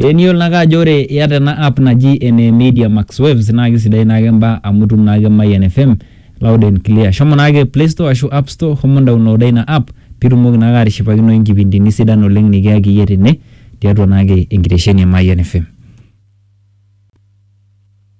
Ee niyiolo naake ajo ore iata ena app naji ene media max waves naake sidai naake imbaa amu itum naake mayian fm loud and clear. Shomo naake playstore ashu appstore shomo indaonloda ina app piitumoki naake atishipakinoyu inkipindini sidan oleng' nekiyaki iyie tene tiatua naake enkitesheni e mayian fm.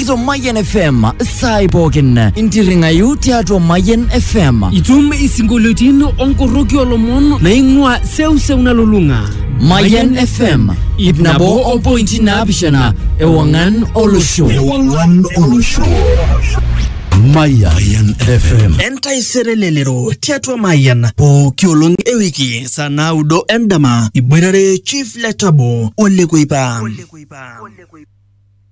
Ito Mayen FM sai pookin intirring'ayu tiatua Mayen FM. Itum isinkolioitin onkoroki olomon naing'ua seuseu nalulung'a. Mayen FM ip nabo o pointi naapishana ewang'an olosho. Ewang'an olosho. Mayan FM. Entaisere lelero tiatua Mayan pooki olong e wiki saa naudo endama iboitare Chief Letabo Ole Kuipa.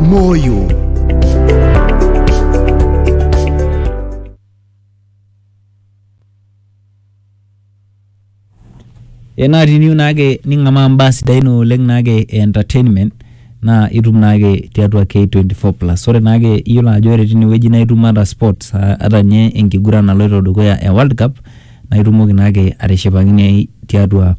Moyo. Eh, naa tiniu naake ning'amaa mbaa sidain oleng naake e entertainment naa itum naake tiatua K24 plus. Ore naake iyiolo ajo ore tinewueji naa itum ata sports aa ata ninye enkiguran naloito dukuya e world cup. naa itumoki naake atishipakinoi tiatua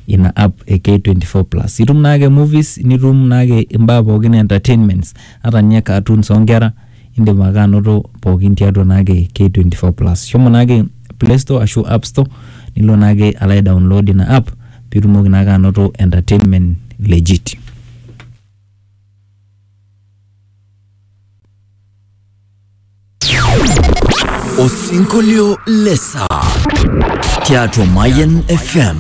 ina app e K24 plus. Itum naake movies, nitum naake imbaa pookin e entertainments, ata ninye cartoons oo nkera, indim ake anoto pookin tiatua naake K24 plus. Shomo naake play store ashu app store nilo naake alo aidownload ina app piitumoki naake anoto entertainment legit. Osinkolio le saa tiatua Mayan FM.